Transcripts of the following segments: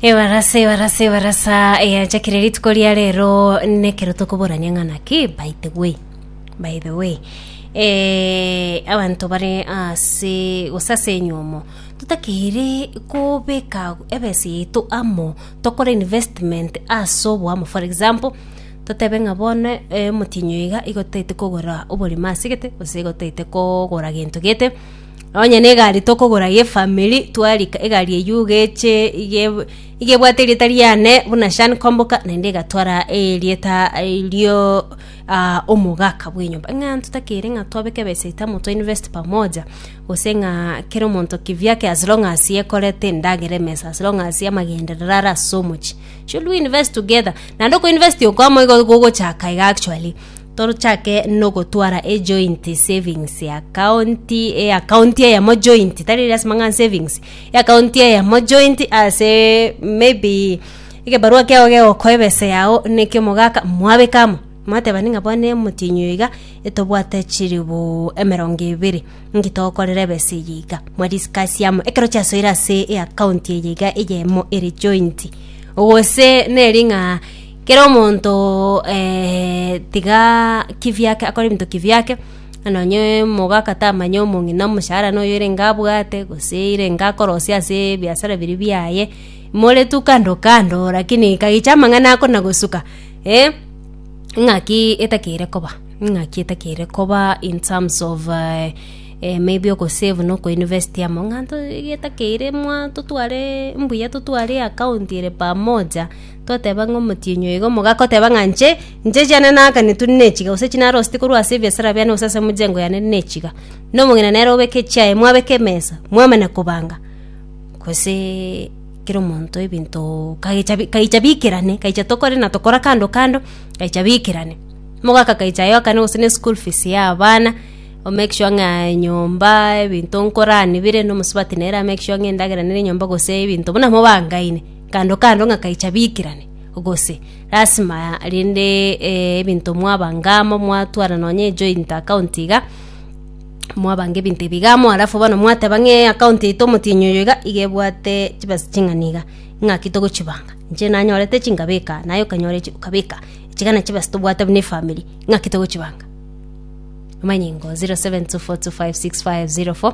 ebarasa ebarasa ebarasa eyachakire rituko ria rero nekero tokoborania ng'ana ki by the way by the way eh, abanto bare ase gose ase enyomo totakeire kobeka ebesa yaito amo tokore investment ase oboamo for example totebe ng'a bono eh, omotienyi oyo iga igo totaete kogora oborimo ase gete gose igo totaete kogora gento gete Onye negari tokogora y'efamiri, twarika egari eyio iga eche iga eb- iga ebwate erieta riane buna Shan Komboka naende egatwara erieta rio ah omogaka bw'enyomba. Ng'a totakeire ng'a twabeka ebesa eito amo to invest pamoja, gose ng'a kera omonto kivyake as long as ekorete endagera emesa, as long as amagenderero are ase omochie, should we invest together? Naende okoinvesti oko amo igo gogochaka iga actually. Torochake nogotwara ejoint savings account, eaccount eyemo joint, tari eri ase mang'ana savings, eaccount eyemo joint ase maybe egebarua kiago gegokoa ebesa yago na ekia omogaka mwabeka amo, mwatebania ng'a bono emotienyi oyo iga etobwate chilibu emerongo ebere, nki togokorera ebesa eye iga, mwa discuss amo ekero chiasoire ase eaccount eye iga eyemo ere joint. Gose neri ng'a. Kera omonto eh, tiga kibiake akore ebinto kibiake, nonye omogaka tamanye omong'ina omoshahara noyo erenge abwate, gose erenge akorosia ase ebiasara biri biaye, more tu kando kando lakini kagicha amang'ana ako na gosuka eh, ng'aki etakeire koba, ng'aki etakeire koba in terms of eh, eh maybe ogosave na okoinvest amo, ng'a nto iga etakeire mwa totware mbuya totware eakaunti ere pamoja. Toteba ng'a omotienyi oyo iga omoga akoteba ng'a inche, inche chiane naakanetwe nechiga, gose chinarosete korwa ase ebiasara biane gose ase emegengo yane nechiga, na omong'ina nere obeke echiaye, mwabeka emesa, mwamanya kobanga, gose kera omonto ebinto kagecha bi- kaicha bikerane, kaicha tokore na tokora kando kando, kaicha bikerane. Mogaka kaicha ayokane gose ne school fees ya abana, o make sure ng'a enyomba, ebinto nkoranibire, na omosubati nere a make sure ng'a endagera nere enyomba gose ebinto buna mobangaine. kando kando ng'a kaicha biikerane, gose lasima rende eh, ebinto mwabanga amo, mwatwara nonye ejoint account iga, mwabanga ebinto ebi iga amo, alafu bono mwateba ng'a eaccount yaito omotienyi oyo iga, iga ebwate chibesa ching'ana iga, ng'aki togochibanga, inche nanyorete echi nkabeka, naye okanyora echi okabeka, ichiga na chibesa tobwate buna efamiri, ng'aki togochibanga? amanyingo 0724256504.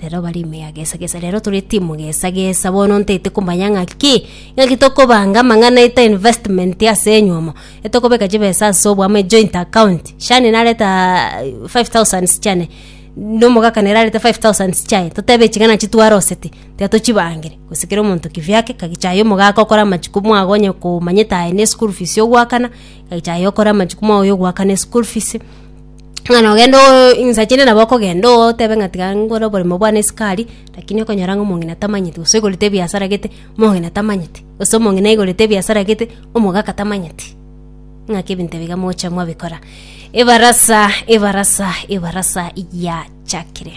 Rero bare ime ya gesa gesa, rero tore timu gesa gesa, bono ntaete komanya ng'aki ng'aki tokobanga amang'ana eta investment ase enywomo, etokobeka chibesa ase obwamo ejoint account, shani nareta ah, five thousand chiane na omogaka nere arete five thousand chiaye, totebe eching'ana echio twaroseti, tiga tochibangire, gose kera omonto kivyake, ngaki chaye omogaka okore amachukumu aye onye komanyete aye ne school fees ogoakana, ngaki chaye okore amachukumu aye oyogoakana eschool fees. Ng'a nogende oo insacha inde nabo okogenda oo otebe ng'a tiga nkore oboremo bwane esukari, rakini okonyora ng'a omong'ina tamanyeti gose oigorete ebiasara gete omong'ina tamanyeti, gose omong'ina aigorete ebiasara gete omogaka tamanyeti, ng'aki ebinto ebi iga mogocha mwabikora. Ebarasa ebarasa ebarasa yachakire.